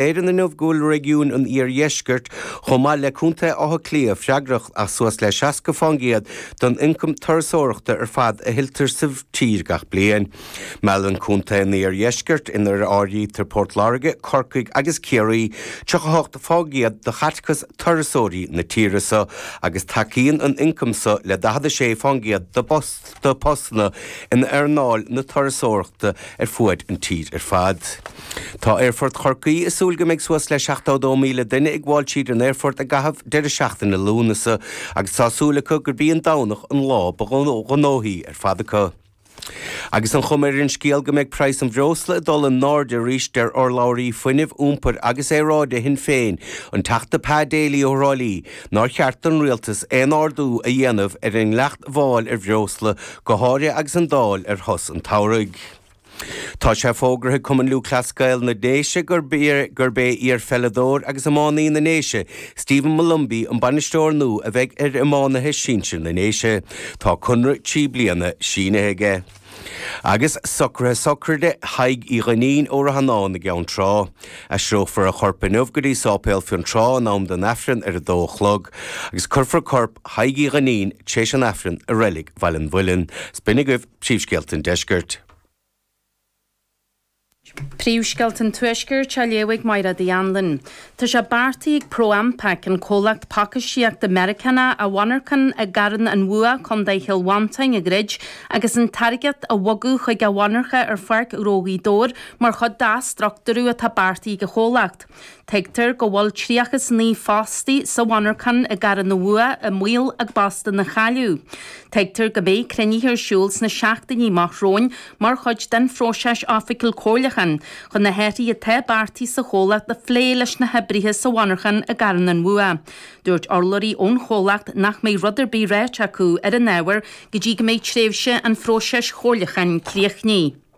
Éireann inniu go bhfuil réigiún an iardheiscirt, chomh maith le Contae Átha Cliath, freagrach as suas le 60 fán gcéad den ioncam turasóireachta ar fad a thuilltear sa tír gach bliain. Meallann Contae an Iardheiscirt, inar áirítear Port Láirge, Corcaigh agus Ciarraí, 38 fán gcéad de chaiteachas turasóirí na tíre so, agus tacaíonn an t-ioncam so le 46 fán gcéad de bpost. de phostanna in earnáil na turasóireachta ar fuaid an tír ar fad. Tá Aerfort Chorcaí ag súil go mbeidh suas le 72,000 duine ag gabháil tríd an aerfort i gcaitheamh deireadh seachtaine Lúnasa agus tá súil acu gurb í an Domhnach an lá ba ghnóthaí ar fad acu. Agus an chuma ar an scéal go mbeidh praghas an bhreosla ag dul i n-airde arís deir urlabhraí Fuinnimh, Iompair agus Aeráide Shinn Féin, an Teachta Pa Daly ó Thrá Lí, Nár cheart don Rialtas aon ardú a dhéanamh ar an ndleacht mháil ar bhreosla, go háirithe agus an Dáil ar shos an tsamhraidh? Tá sé fógraithe ag Cumann Lúthchleas Gael na nDéise gurb é iar-pheileadóir agus iománaí na nDéise, Stephen Molumphy an bainisteoir nua a bheidh ar iománaithe sinsir na nDéise. Tá conradh trí bliana sínithe aige. Agus socruithe sochraide Thaidhg Uí Dhuinnín ó Ráthanáin i gCeann Trá. Aistreofar a chorp inniu go dtí Sáipéal Fionntrá in am don Aifreann ar a dó a chlog agus cuirfear corp Thaidhg Uí Dhuinnín téis an Aifrinn i Reilig Bhaile an Mhuilinn. Is b'in agaibh príomhscéalta an Deiscirt. Príomhscéalta an Tuaiscirt á léamh ag Máire D. Anluain. Tá sé beartaithe ag ProAmpac, an comhlacht pacáistíochta Meiriceánach, a mhonarchan i gCarn an Bhua, Co Chill Mhantáin, a dhruid agus an táirgeacht a bhogadh chuig a mhonarcha ar Pháirc Ghnó Ghaoth Dobhair mar chuid d'athstructúrú atá beartaithe ag an chomhlacht. Tuigtear go bhfuil 39 fostaí sa mhonarchan i gCarn an Bhua i mbaol a bpostanna a chailleadh. Tuigtear go mbeidh cruinnithe ar siúl sna seachtainí amach romhainn mar chuid den phróiseas oifigiúil comhairliúcháin chun na hathruithe atá beartaithe sa chomhlacht a phlé leis na hoibrithe sa mhonarchan i gCarn an Bhua. Dúirt urlabhraí ón chomhlacht nach mbeidh rud ar bith ráite acu ar an ábhar go dtí go mbeidh tréimhse an phróisis chomhairliúcháin críochnaithe.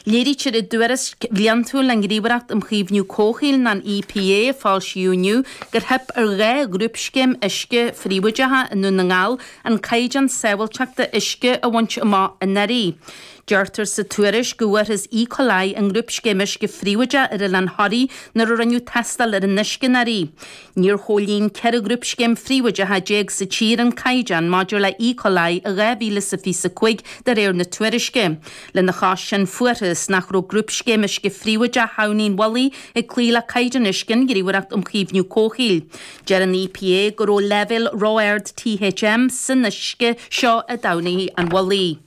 Léirítear i dtuairisc bhliantúil an Ghníomhaireacht um Chaomhnú Comhshaoil, nó an EPA, a foilsíodh inniu, gur theip ar dhá ghrúpscéim uisce phríobháideacha i nDún na nGall an caighdeán sábháilteachta uisce a bhaint amach anuraidh. Deirtear sa tuairisc go bhfuarthas E. coli i ngrúpscéim uisce phríobháideach ar Oileán Thoraí nuair a rinneadh tástáil ar an uisce anuraidh. Níor chomhlíon 14 ghrúpscéim phríobháideacha sa tír an caighdeán maidir le E. coli i 2025 de réir na tuairisce. Lena chois sin fuarthas nach raibh grúpscéim uisce phríobháideach Thamhnaigh an Mhullaigh ag cloí le caighdeán uisce an Ghníomhaireacht um Chaomhnú Comhshaoil. Deir an EPA go raibh leibhéal ró-ard THM san uisce seo i dTamhnaigh an Mhullaigh.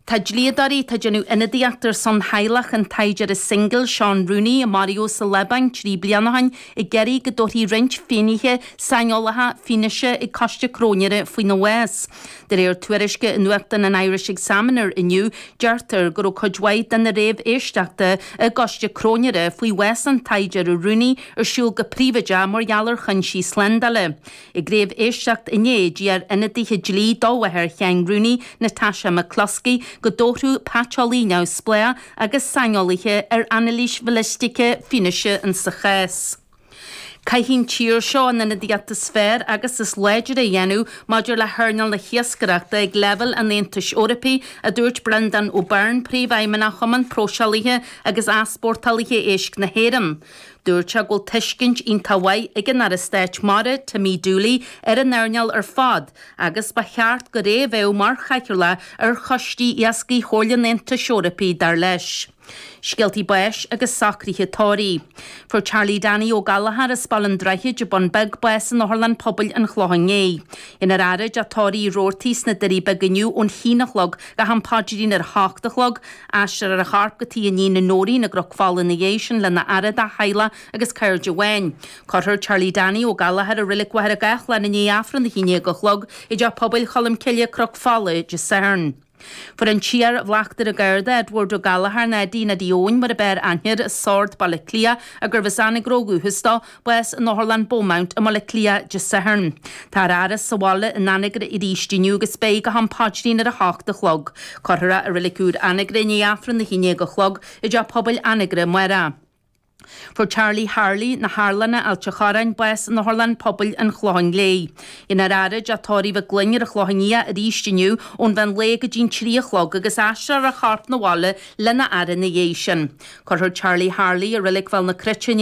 Tá dlíodóirí atá ag déanamh ionadaíocht ar son theaghlach an tsaighdiúra singil Seán Rooney a maraíodh sa Liobáin trí bliana ó shin ag iarraidh go dtabharfaí roinnt finnéithe saineolacha fianaise ag coiste cróinéara faoina bhás. De réir tuairisce i nuachtán an Irish Examiner inniu, deirtear go raibh cuid mhaith de na réamhéisteachtaí i gcoiste cróinéara faoi bhás an tsaighdiúra Rooney ar siúl go príobháideach mar gheall ar chúinsí slándála. Ag réamhéisteacht inné d'iarr ionadaithe dlí do mháthair Sheáin Rooney, Natasha McCloskey, go dtabharfadh paiteolaí neamhspleách agus saineolaithe ar anailís bhalaistíochta fianaise insa chás. Caithfidh an tír seo an ionadaíocht is fearr agus is láidre a dhéanamh maidir le hearnáil na hiascaireachta ag leibhéal an Aontais Eorpaigh, a dúirt Breandán Ó Beirn, Príomhfheidhmeannach Chumann Próiseálaithe agus Easpórtálaithe Éisc na hÉireann. Dúirt sé go bhfuil tuiscint iontach mhaith ag an Aire Stáit Mara, Timmy Dooley, ar an earnáil ar fad agus ba cheart gurb é a bheadh mar chathaoirleach ar choistí iascaigh Chomhairle an Aontais Eorpaigh, dar leis. Scéaltaí báis agus socruithe tórraimh. Fuair Charlie Danny Ó Gallchóir as Baile an Droichid, An Bun Beag bás in Otharlann Pobail an Chlocháin Léith. Déanfar a fhaire i dteach tórraimh Roarty sna Doirí Beaga inniu ón haon a chlog go ham paidrín ar a hocht a chlog, Aistreofar a chorp go tigh a iníne Nóirín i gCnoc Fola ina dhiaidh sin lena fhaire dá theaghlach agus cairde amháin. Cuirfear Charlie Danny Ó Gallchóir i Reilig Mhachaire Gathlán i ndiaidh Aifreann a haon déag a chlog i dTeach Pobail Cholm Cille, Cnoc Fola Dé Sathairn. Fuair an tIar-Bhleachtaire Garda, Edward Ó Gallchóir, Neidín Eddie Eoin mar ab fhearr aithne air i Sord, Baile Átha Cliath, ach gurbh as Anagaire ó dhúchas dó, bás in Otharlann Beaumont i mBaile Átha Cliath Dé Sathairn. Táthar á fhaire sa bhaile in Anagaire aríst inniu agus beidh go ham paidrín ar a hocht a chlog. Cuirfear é i Reilig Úr Anagaire i ndiaidh Aifreann a haon déag a chlog i dTeach Pobail Anagaire amárach. Fuair Charlie Harley na hArlanna, Ailt an Chorráin bás in Otharlann Pobail an Chlocháin Léith. Déanfar a fhaire i dteach tórraimh Mhig Fhloinn ar an Chlochán Liath aríst inniu ón mheán lae go dtí'n trí a chlog agus aistreofar a chorp 'na bhaile lena fhaire ina dhiaidh sin. Cuirfear Charlie Harley i Reilig Bhéal na Cruite i ndiaidh.